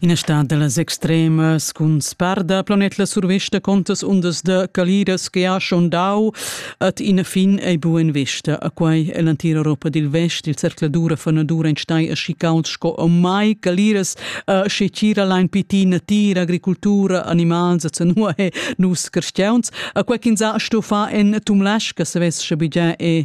Ina stad dallas extremas cun sparda planet la survesta contas undas da caliras che ha schondau at ina fin ei buen vesta a quei ell'antira Europa dil vest il cercladura fanadura en stai aschi cauld sco a mai caliras sche tira lein piti natira agricultura animals a zanua e nus crestiauns a quei ch'ins ha sto fa en tumlasca se ves sche bigia e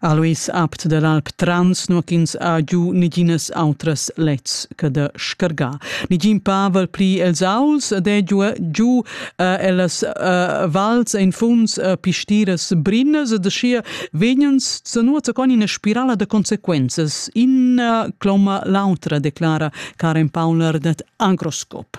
Aluis apt dall'alp Trans nua ch'ins ha giu neginas outras lets che da scargar. Negin pavel pli els auls ed è giu, giu uh, ellas uh, vals en funs uh, pistiras brinas ed aschia vegnens zanuot con ina spirala da consequenzas, in uh, cloma l'autra, declara Karen Paulner dat Agroskop.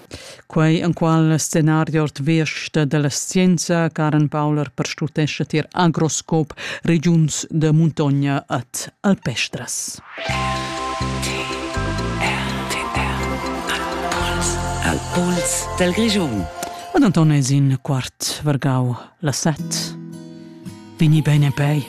Quei enqual scenario ord vesta dalla scienza Karen Paula perstutescha tier Agroscope regiuns da muntogna ad Alpestras. Al pols del Grischun. Ad Antones in quart vergau la set. Vini bene pei.